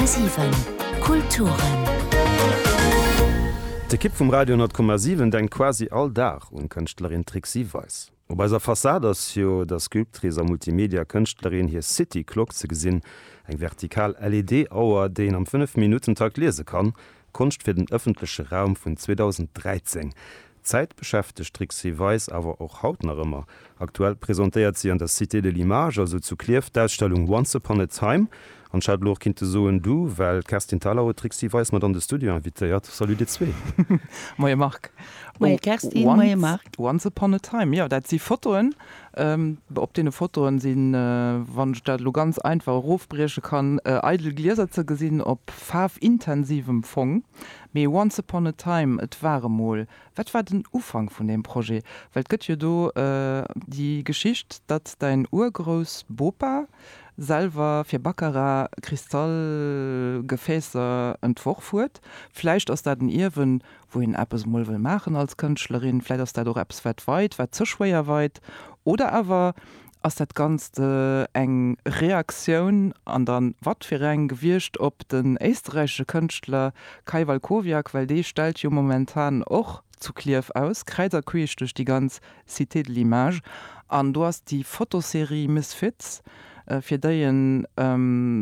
10,7 Kulturen. D'Ekipp vum Radio 10,7 denkt quasi all Dag un d'Kënschtlerin Trixi Weis. Op eiser Fassad ass jo der Sculptrice a Multimedia-Kënschtlerin hir City Clock ze gesinn, eng vertikal LED-Auer, déi een am 5 Minutten-Takt liese kann, Konscht fir den ëffentleche Raum vun 2013. D'Zäit beschäftegt d'Trixi Weis awer och haut nach ëmmer. Aktuell presentéiert si an der Cité de l'image, also zu Klierf, d'Ausstellung Once upon a time. An ech hätt elo och kinnte soen du, well d'Kerstin Thalau huet d'Trixi Weis mat an de Studio invitéiert. Salut dir zwee. Moie Marc. Moie Kerstin, moie Marc. Once upon a time, jo, dat si Fotoen Op deene Fotoen sinn, wann ech dat elo ganz einfach erofbrieche kann, eidel Glieser ze gesinn op faarfintensivem Fong. Mee Once upon a time, et war emol, wat war den Ufank vun deem Projet? Well et gëtt jo do déi Geschicht, datt däin Urgroussbopa selwer fir Baccarat Kristallgefäässer entworf huet. Vläicht ass dat en Ierwen wou een eppes emol wëll maachen als Kënschtlerin, vläit ass dat och eppes wat weit, wat ze schwéier weit, oder awer ass dat Ganzt eng Reaktioun, an da watfireng, gewiescht op den éisterräichesche Kënschtler Kai Walkowiak, well dee stellt jo momentan och zu Klierf aus, kräiz a queesch duerch déi ganz Cité de l'image, an do ass déi Fotoserie Misfits, fir déi e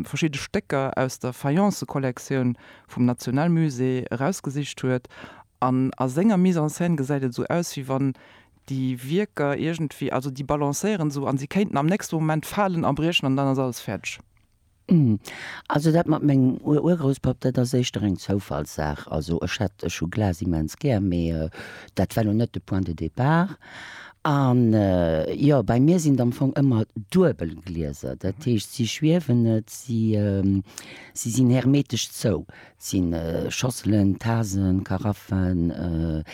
verschidde Stécker aus der Fayence-Kollektioun vum National Musée erausgesicht huet, an a senger Mise en scène gesäit et esou aus, wéi wann déi Wierker iergendwéi, also déi balancéieren esou a si kéinten am nächste Moment falen a briechen an dann ass alles fäerdeg. Also dat mat mengem Urgrouspapp, dat ass éischter eng Zoufallssaach. Also ech hat, ech hu Glas immens gär, mee dat war elo net de Point de départ. An jo, bei mir sinn et am Fong ëmmer duebel Glieser, dat heescht si schwiewen net, si Si sinn hermetesch zou. Et si Schosselen, Tasen, Karaffen.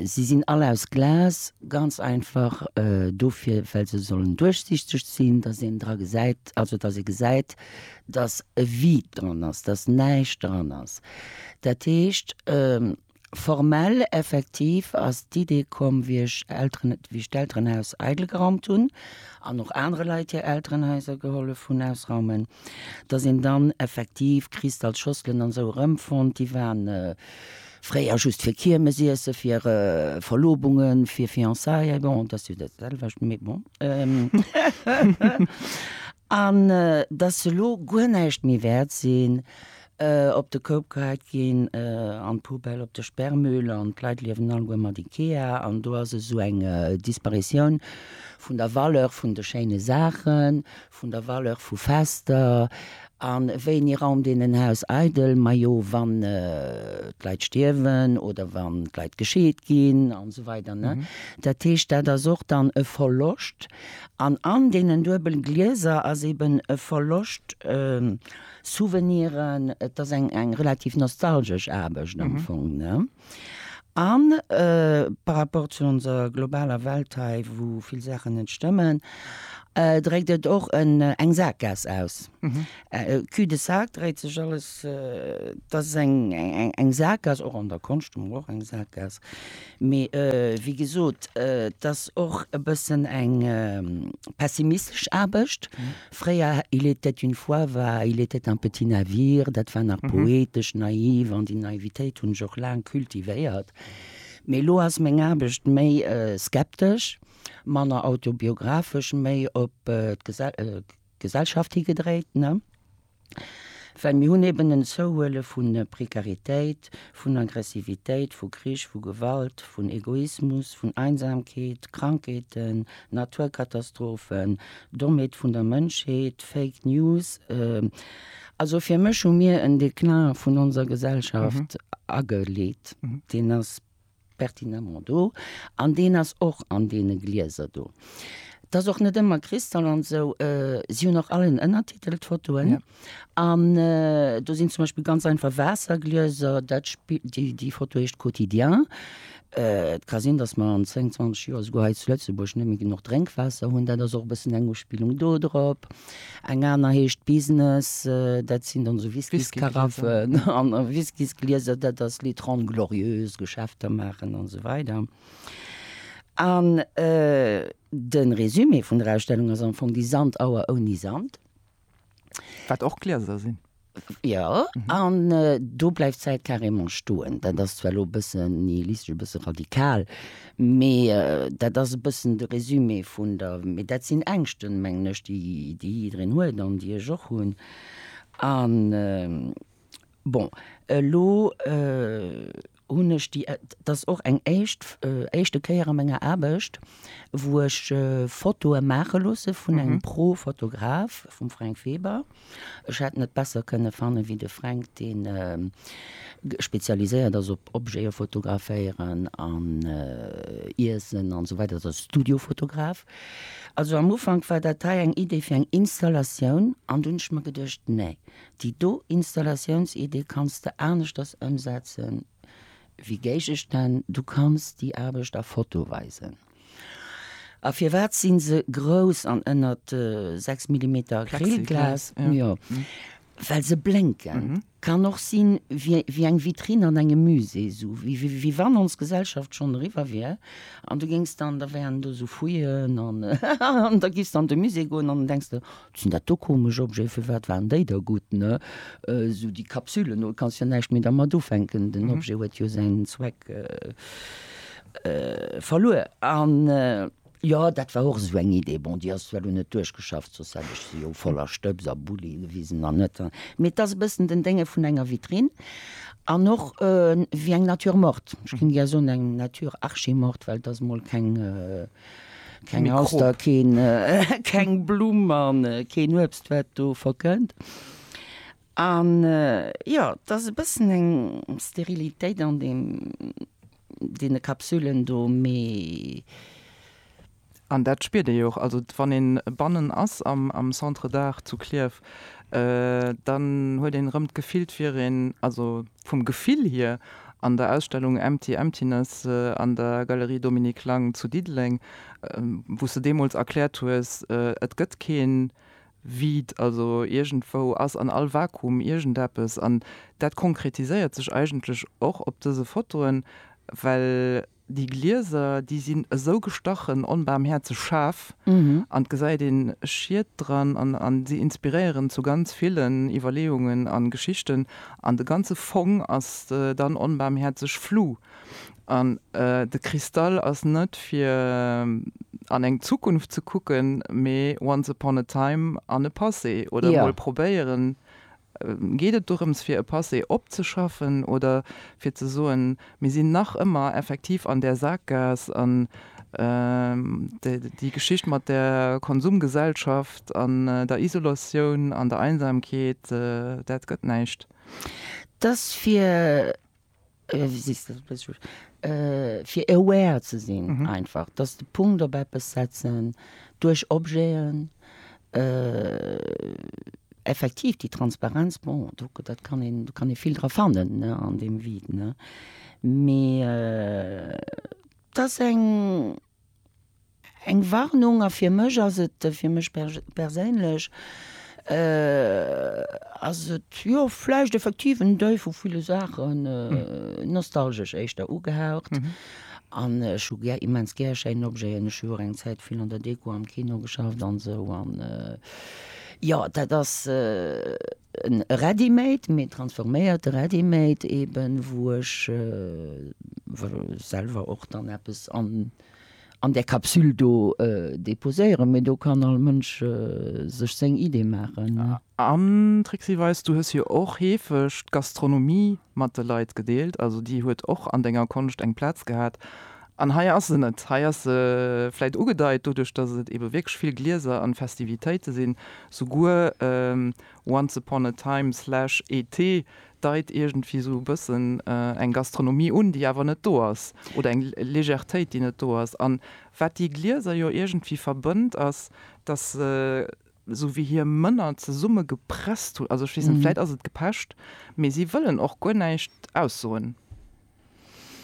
Si sinn all aus Glas, ganz einfach dofir well se sollen duerchsiichteg sinn, datt een dra gesäit, also datt ee gesäit, datt e Vide dran ass, datt näischt dran ass. Dat heescht Formell, effektiv, ass d'Idee komm, wéi ech Elteren, wéi ech d'Elterenhaus eidel geraumt hunn an och anere Leit hir Elterenhaiser gehollef hunn ausraumen, dass een dann effektiv Kristallschosselen an esou erëmfonnt, déi waren fréier just fir Kiermesiesse, fir Verlobungen, fir Fiançaillen, bon, dat ass jo dat selwecht, mee bon. An dass se elo guer näischt méi wäert sinn, op de Koup geheit ginn, an d'Poubelle op de Sperrmüll an d'Leit liewen alleguer mat Ikea an do ass esou eng Disparitioun vun der Valeur vun de schéine Saachen, vun der Valeur vu Fester. An wéini raumt een en Haus eidel? Majo wann d'Leit stierwen oder wann d'Leit gescheet ginn an esou weider. Dat heescht dat ass och dann e Verloscht an an deenen duebel Glieser ass eben e Verloscht, Souveniren, et ass eng eng relativ nostalgesch Aarbecht am Fong, ne? A par rapport zu onser globaler Welt hei, wou vill Saachen net stëmmen, dréckt et och en eng Sakgaass aus. Cul de sac dréit sech alles, et ass eng eng eng Sakgaass, och an der Konscht hu mer och eng Sakgaass. Mee wéi gesot, et ass och e bëssen eng pessimistesch Aarbecht, Fréier, Il était une fois war Il était un petit navire, dat war nach poetesch, naiv, an déi Naivitéit hunn ech och laang cultivéiert. Mee elo ass meng Aarbecht méi skeptesch, manner autobiographesch, méi op d'Gesellschaft higedréit. Well mir hunn eben en Zouhuele vu Prekaritéit, vun Aggressivitéit, vu Krich, vu Gewalt, vun Egoismus, vun Einsamkeet, Krankheeten, Naturkatastrophen, Dommheet vun der Mënschheet, Fake News. Also fir mech hu mir en Déclin vun onser Gesellschaft ageleet. Deen ass pertinemment do an deen ass och an deene Glieser do. Et ass och net ëmmer Kristall an esou. Si hunn och all en Ënnertitel, d'Fotoen. Ja. An do sinn zum Beispill ganz einfach Waasserglieser. Dat Spi-, déi, déi Foto heescht Quotidien. Et ka sinn, datt mer an 10, 20 Joer esouguer hei zu Lëtzebuerg net méi genuch Drénkwaasser hunn. Dat ass och e bëssen eng Uspillung dodrop. Eng aner heescht Business, dat sinn dann esou Whisky-Karaffen an Whisky-Glieser, dat ass les Trente Glorieuses, Geschäfter maachen an esou weider. An de Résumé vun der Ausstellung ass am Fong déi Sandauer ouni Sand. Wat och Glieser sinn. Jo, an do bleift d'Zäit carrément stoen. Dat ass zwar elo e bëssen nihilistesch, e bësse radikal, mee dat ass e bëssen de Résumé vun der, mee dat sinn Ängschten, mengen ech, déi jiddereen huet an déi ech och hunn. A bon, elo hunn ech déi, dat ass och eng éischt, éischte Kéier a menger Aarbecht, wou ech Fotoe maache loosse vun engem Pro-Fotograf, vum Fränk Weber. Ech hätt net besser kënne fanne wéi de Fränk, dee spezialiséiert ass op Objete fotograféieren an Iessen an esou weider, dat ass e Studio-Fotograf. Also am Ufank war dat hei eng Idee fir eng Installatioun an dunn hunn ech mer geduecht, nee, Déi do Installatiounsidee kanns de aneschters ëmsetzen wéi Géigestänn, du kanns déi Aarbecht a Foto weisen. A firwat si se grouss an ënnert 6 Millimeter Acrylglas? Jo, well se blénken. Kann och sinn wéi eng Vitrinn an engem Musée, esou wéi wann ons Gesellschaft schonn eriwwer wier an du géings dann, da wären do esou Fouillen an da giffs dann an de Musée goen an da denks de, Sinn dat do komesch Objeten? Firwat waren déi da gutt, ne? Sou déi Kapsülen, do kanns jo näischt méi dermat ufänken. Den Objet huet jo säin Zweck verluer. An jo, dat war och esou eng Idee. Bon, déi ass zwar dunn net duerchgeschafft, soss hätt ech se jo voller Stëbs a Bulli gewisen an net. Mee et ass e bëssen den Dénge vun enger Vitrinn an och wéi eng Nature morte. Ech géing gär soen, eng Nature archi morte, well et ass emol keng. Keng Auster, keng Blumm an keen Uebst wat do verkënnt. An jo, et ass e bëssen eng Sterilitéit an deem, deene Kapsülen do, mee. An dat spiert ee jo och. Also wann een bannen ass am Centre d'Art zu Klierf, dann huet een erëm d'Gefill, 't wier een, also Vum Gefill hier, an der Ausstellung Empty Emptiness an der Galerie Dominique Lang zu Diddeleng, wou s de deemools erkläert hues, et gëtt keen Vide, also iergendwou ass an all Vakuum iergendeppes, an dat konkretiséiert sech eigentlech och op dëse Fotoen, well Déi Glieser, déi sinn esou gestachen onbarmhäerzeg schaarf, an et gesäit een Schied dran, an si inspiréieren zu ganz villen Iwwerleeungen an Geschichten, an de ganze Fong ass dann onbarmhäerzeg flu, an de Kristall ass net fir an eng Zukunft ze kucken, mee once upon a time an e Passé, oder mol probéieren Geet et dorëms fir e Passé opzeschaffen oder fir ze soen, mir sinn nach ëmmer effektiv an där Sakgaass an déi Geschicht mat der Konsumgesellschaft an der Isolatioun an der Einsamkeet, dat gëtt näischt? Dass fir fir aware ze sinn einfach, dass de Punkt op eppes setzen duerch Objeten, effektiv déi Transparenz, bon do dat kann een, do kann ee vill dra fannen, ne, an deem Vide, ne, mee dat ass eng. Eng Warnung, a fir mech ass et, fir mech perséinlech ass et jo vläicht effektiv en Deuil vu ville Saachen, nostalgesch éischter ugehaucht. An ech hu gär, immens gär schéin Objeten. Ech hu jo och eng Zäit vill an der Deko am Kino geschafft an esou an jo dat ass, En Ready-made, mee en transforméierte Ready-made eben, wou ech selwer och dann eppes an där Kapsül do deposéieren. Mee do kann all Mënsch sech seng Idee maachen. An Trixi Weis, du hues jo och heefeg d'Gastronomie mat de Leit gedeelt, also déi huet och an denger Konscht eng Plaz gehat. An hei ass se net. Hei ass se vläit ugedeit, doduerch datt et ebe wierklech vill Glieser an Festivitéite sinn. Souguer Once Upon a Time slash ET deit iergendwéi esou e bëssen eng Gastronomie un, déi awer net do ass, oder eng Legertéit, déi net do ass. An wat déi Glieser jo iergendwéi verbënnt, ass, datt se esou wéi hir Mënner zesummegepresst hunn. Also ech weess net, vläit ass et gepecht, mee si wëllen och guer näischt aussoen.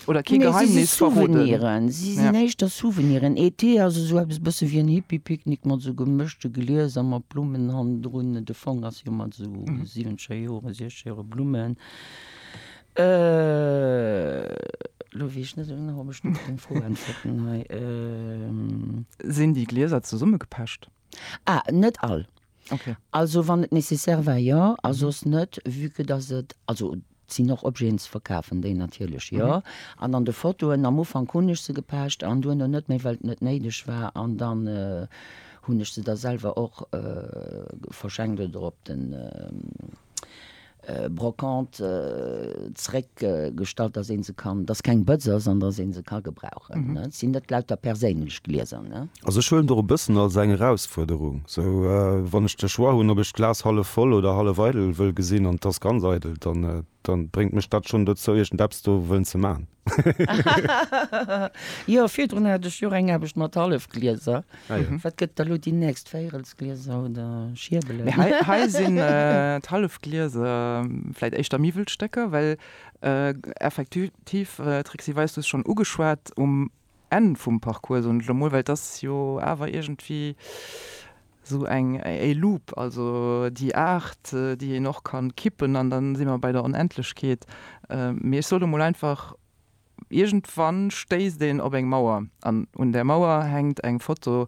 Oder kee Geheimnis verroden. Nee, si si Souveniren. Si sinn éischter Souveniren. E. T. ass esou eppes e bësse wéi en Hippie-Picknick mat esou gemëschte Glieser mat Blummen hannendrun. De Fong ass jo mat esou siwenzger Jore, siechzeg Jore Blummen. Elo weess ech net esou genau, ob ech net op deng Fro äntwerten hei. Sinn déi Glieser zesummegepecht? A. Net all. Also wann et nécessaire war, jo, a soss net, vue que dass et, also et sinn och Objeten ze verkafen, déi natierlech jo. An an de Fotoen am Ufank hunn ech se gepecht an duerno net méi, well et net néideg war. An dann hunn ech se da selwer och verschenkt oder op den, Brocante zréck gestallt, dass een se kann, dass keng Bëtz ass an dass een se ka gebrauchen. Et sinn net lauter perséinlech Glieser. Also ech huelen der e bëssen als eng Erausfuerderung, sou wann ech de Choix hunn, ob ech d'Glas hallef voll oder hallef eidel wëll gesinn an d'Tass ganz eidel, dann bréngt mech dat schonn dozou iergend eppes do wëllen ze man. Jo, virdrun hat ech jo eng Aarbecht mat Hallefglieser. Ah jo. Wat gëtt da lo déi nächst? Véirelsglieser oder Schiebelen? Mee hei, hei sinn d'Hallefglieser vläit éischter Miwwelstécker, well effektiv, d'Trixi Weis, du hues schonn ugeschwat, um Enn vum Parcours, soen ech elo mol, well et ass jo awer iergendwéi esou eng e Loop, also déi Aart, déi een och kann kippen an dann si mer bei der Onendlechkeet. Mee ech sot elo mol einfach, iergendwann stéisst een op eng Mauer an un där Mauer hänkt eng Foto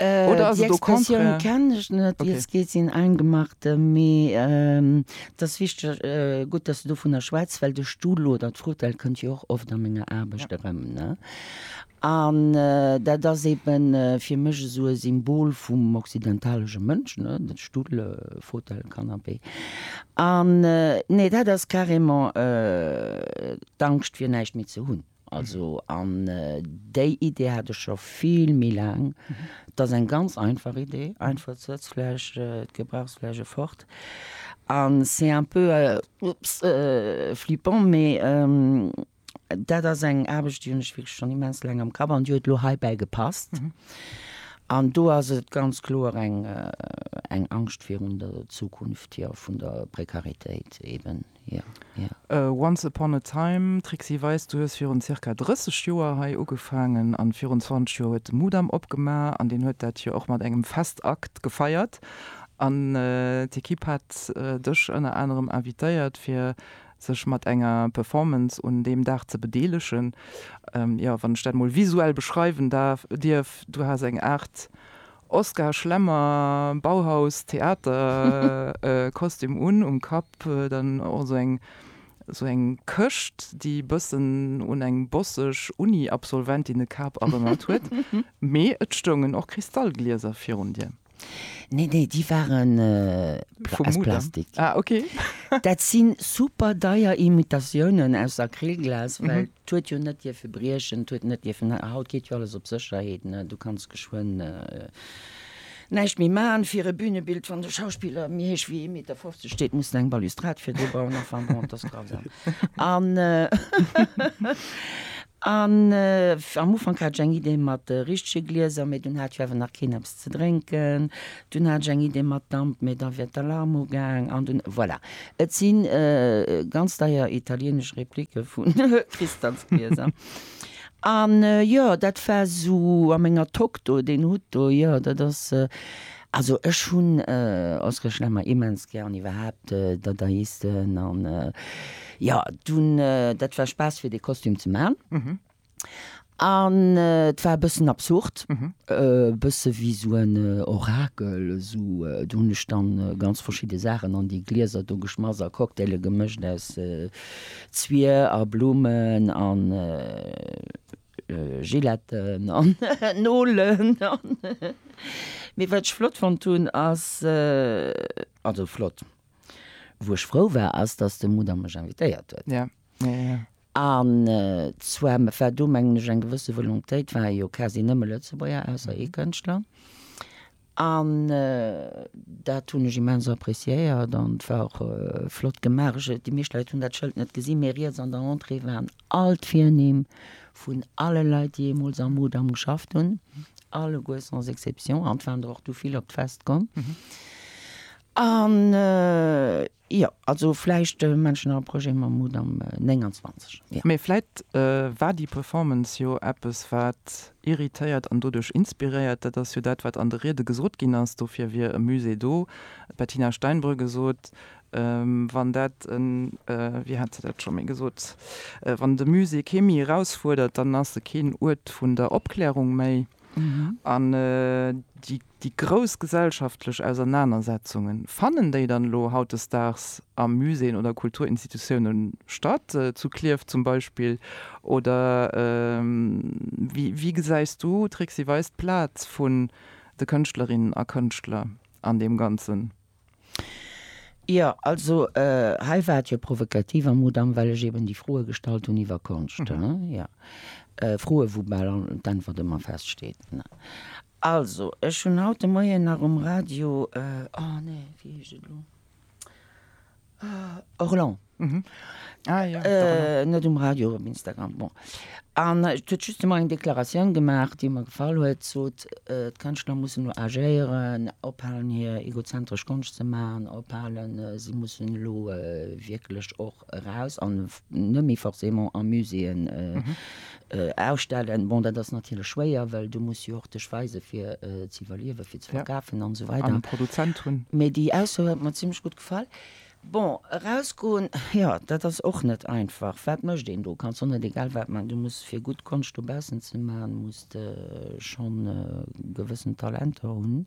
Oder ass et au contraire? Déi Expressioun kenn ech net, wéi et geet sinn eingemachte, mee et ass wichteg, gutt, dass du dovun schwätz, well de Stull oder d'Frutell kënnt jo och oft a menger Aarbecht erëm. An dat ass eeben fir mech esou e Symbol vum occidentalesche Mënsch, de Stull, Fauteuil, Canapé. An nee, dat ass carrément d'Angscht, fir näischt méi ze hunn. Also, an déi Idee hat ech scho vill méi laang. Et ass eng ganz einfach Idee, einfach d'Sëtzfläch, d'Gebrauchsfläch erfort. A c'est un peu, oups, flippant, mee dat ass eng Aarbecht, déi hunn ech wierklech schonn immens laang am Kapp an déi huet elo heibäi gepasst. An do ass et ganz kloer eng Angscht virun der Zukunft, jo, vun der Prekaritéit eeben. Once Upon a Time, Trixi Weis, du hues virun zirka 30 Joer hei ugefaangen an virun 20 Joer huet de Mudam opgemaach an deen huet dat jo och mat engem Festakt gefeiert an d'Ekipp hat dech ënner anerem invitéiert fir sech mat enger Performance un deem Dag ze bedeelegen. Jo, wann ech dat mol visuell beschreiwen dierf, du has eng Aart Oskar Schlemmer, Bauhaus, Theater, e Kostüm un, um Kapp dann och esou eng esou eng Këscht, déi bëssen un eng bosseg Uni-Absolventinnekap erënnert huet. Mee et stoungen och Kristallglieser virun dir. Nee, nee, déi ware aus Plastik. Dat si super deier Imitatiounen aus Acrylglas, well 't huet jo net dierfe briechen, 't huet net dierfen, haut geet jo alles op Sécherheet, ne, du kanns geschwënn näischt méi maachen. Fir e Bünebild, wann de Schauspiller méi héich wéi ee Meter fofzeg steet, muss en eng Balustrad fir dee bauen, enfin bon, et ass grausam. An am Ufank hat ech eng Idee mat richtege Glieser, mee dunn hat jo awer nach keen eppes ze drénken, Dunn hat ech eng Idee mat Damp, mee da wär d'Alarm ugaang an dunn, voilà. Et si ganz deier italienesch Replique vu Kristansglieser. A jo, dat war esou a menger Tock do, deen Hutt do, jo, dat ass. Also ech hunn Oskirchen ëmmer immens gär an iwwerhaapt Dadaisten an jo, dunn, dat war Spaass fir dee Kostüm ze man. An et war e bëssen absurd, e bësse wéi esou en Orakel, esou. Do hunn ech dann ganz verschidde Saachen an déi Glieser do geschmass a Cocktaile gemëscht aus Zwier a Blummen a Gilletten an Nolen. Mee wat ech flott fonnt hunn ass, also flott, wou ech frou war, ass, datt de Mudam mech invitéiert huet. An zwar war do, mengen ech, eng gewësse Volontéit, waren jo quasi nëmme Lëtzebuerger, ausser ee Kënschtler. An dat hunn ech immens appréciéiert an et war och flott gemaach. Déi meescht Leit hunn dat Schëld net gesinn, mee riets an der Entrée waren all d'Virnimm vun alle Leit, déi jeemools am Mudam geschafft hunn, alleguer sans exception. An et waren der och du vill op d'Fest komm. An Jo, also vläicht manchen a Projet Mammut am 29, jo. Mee vläicht war déi Performance jo eppes, wat irritéiert an doduerch inspiréiert. Dat ass jo dat, wat an de Riede gesot ginn ass, dofir wier e Musée do. D'Bettina Steinbrügge sot, wann dat e, wéi hat se dat scho méi gesot, wann de Musée kee méi erausfuerdert, dann ass e keen Uert vun der Opklärung méi. An déi. Déi grouss gesellschaftlech Ausernanersetzunge, fannen déi dann elo hautdesdaags a Muséeën oder Kulturinstitutioune statt, zu Klierf zum Beispill? Oder wéi gesäis du, Trixi Weis, d'Plaz vun de Kënschtlerinnen a Kënschtler an deem Ganzen? Jo, also hei war et jo provokativ am Mudam, well ech eben déi Froe gestallt hunn iwwer Konscht, hm, jo. Froe wou bal d'Äntwert ëmmer feststeet. Also, ech hunn haut de Moien nach um Radio, oh nee, wéi heescht et elo? Orlan net um Radio um Instagram bon an et huet just emmer eng Deklaratioun gemaach, déi mer gefall huet, sot d'Kënschtler mussen elo agéieren, ophalen hir egozentresch Konscht ze maachen, ophalen si mussen elo wierklech och eraus an net méi forcément a Muséeën ausstellen. Bon dat ass natierlech schwéier, well du muss jo och dech weise fir ze iwwerliewen, fir ze verkafen an esou weider an e Produzent hunn. Mee déi Ausso huet mer zimmlech gutt. Fall. Bon, erausgoen, jo, dat ass och net einfach. Wat mécht een do? Kanns och net egal wat maachen. Du muss, fir gutt Konscht dobaussen ze maachen, muss de schonn e gewëssent Talenter hunn.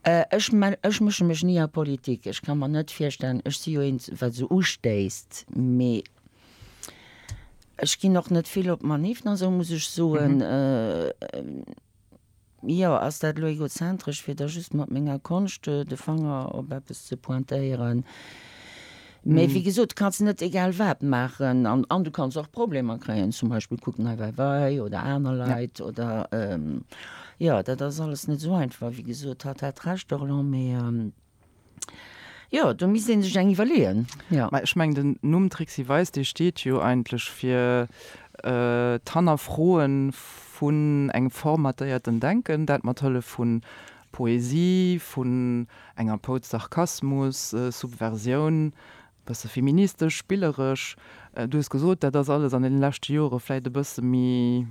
Ech ech mësche mech ni a Politik. Ech ka mer net virstellen, ech si jo eent, wat esou ustéisst, mee ech ginn och net vill op Maniffen a sou, muss ech soen. Jo, ass dat elo egozentresch, fir da just mat menger Konscht de Fanger op eppes ze pointéieren? Mee wéi gesot, du kanns net egal wat maachen an du kanns och Problemer kréien. Zum Beispill kuck Nei Weiwei oder aner Leit oder, jo, dat ass alles net esou einfach. Wéi gesot, hatt hat Recht, Orlan, mee. Jo, do misst ee sech eng iwwerleeën, jo. Mä ech mengen, den Numm Trixi Weis, dee steet jo eigentlech fir d'Hannerfroe vun engem formatéierten Denken, dat mat Hëllef vu Poesie, vun enger Pouz Sarkasmus, Subversioun, Bësse feministesch, spilleresch. Du hues gesot, dat ass alles an deene leschte Jore vläit e bësse méi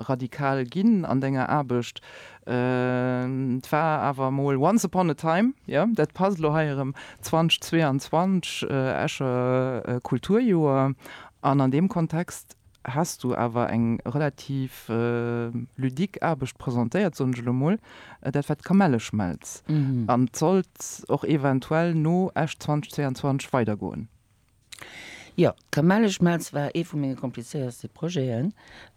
radikal ginn an denger Aarbecht. Et war awer emol once upon a time, jo, dat passt elo hei erëm, 2022, Escher Kulturjoer, an an deem Kontext Has du awer eng relativ ludique Aarbecht presentéiert, soen ech elo mol, dat war d'Kamelleschmelz, an et sollt och eventuell no Esch 2022 weider goen. Jo, d'Kamelleschmelz war ee vu menge komplizéierste Projeten,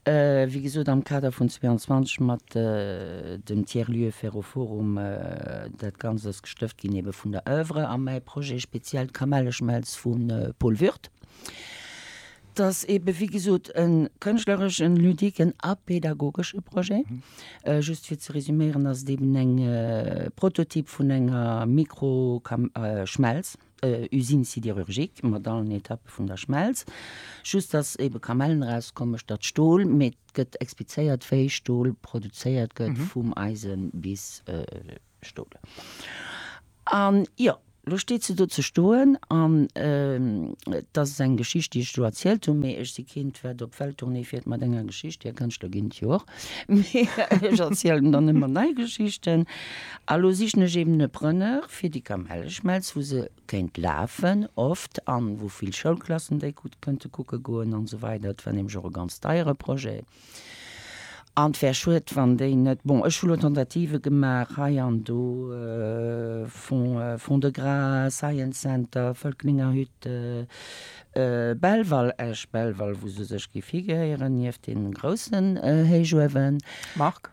wéi gesot am Kader vun 22 mat dem Tiers Lieu Ferroforum. Dat Ganzt ass gestëft ginn ebe vun der Oeuvre a mäi Projet speziell d'Kamelleschmelz vu Paul Würth. T'ass eben, wéi gesot, e kënschtlereschen, ludiquen a pädagogesche Projet. Just fir ze resuméieren, ass et eben eng Prototyp vun enger Mikro-Kam, Schmelz, Usine sidérurgique, mat allen Etappe vun der Schmelz. Just, dass eben Kamellen erauskommen, statt Stol. Mee et gëtt explizéiert, wéi Stol produzéiert gëtt, vum Eisen bis Stol. An jo, lo steet se do ze stoen. An et ass eng Geschicht, déi ech do erzielt hunn, mee ech si keent, wat op Welttournée fiert mat enger Geschicht. Dir Kënschtler ginn et jo och, mee ech erzielen dann ëmmer nei Geschichten. A lo sichen ech eben e Preneur fir déi Kamelleschmelz, wou se kéint lafen oft an wou vill Schoulklassen déi gutt kënnte kucke goen an esou weider. Et war nämlech och e ganz deiere Projet. An et wär schued, wann déi net, bon, ech hu lo Tentative gemaach hei an do, Fonds, Fonds de Gras, Science Center, Völklingerhütte, Belval, Esch-Belval, wou se sech géif higeheieren, nieft deenen groussen Héichuewen. Marc?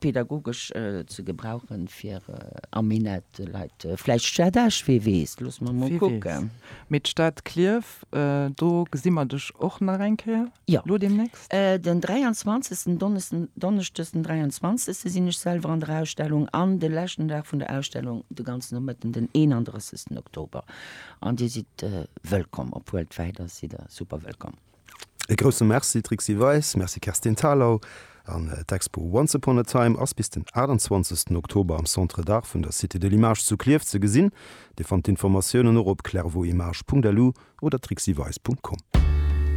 Pädagogesch ze gebrauchen fir am Minett Leit, vläicht d'Stad Esch, wee weess, loosse mer mol kucken. Mee d'Stad Klierf, do gesi mer dech och nach eng Kéier elo deemnächst? Jo, den 23. Donneschdes den 23. sinn ech selwer an der Ausstellung an de leschten Dag vun der Ausstellung de ganzen Nomëtten den 31. Oktober. An Dir sidd wëllkomm op Worldwide, da sidd Der super wëllkomm. E grousse Merci Trixi Weis, Merci Kerstin Thalau an d'Expo Once Upon a Time ass bis den 28 Oktober am Centre d'Art vun der Cité de l'Image zu Klierf ze gesinn. Dir fannt d'Informatiounen och op clairvotimage.lu oder trixiweis.com.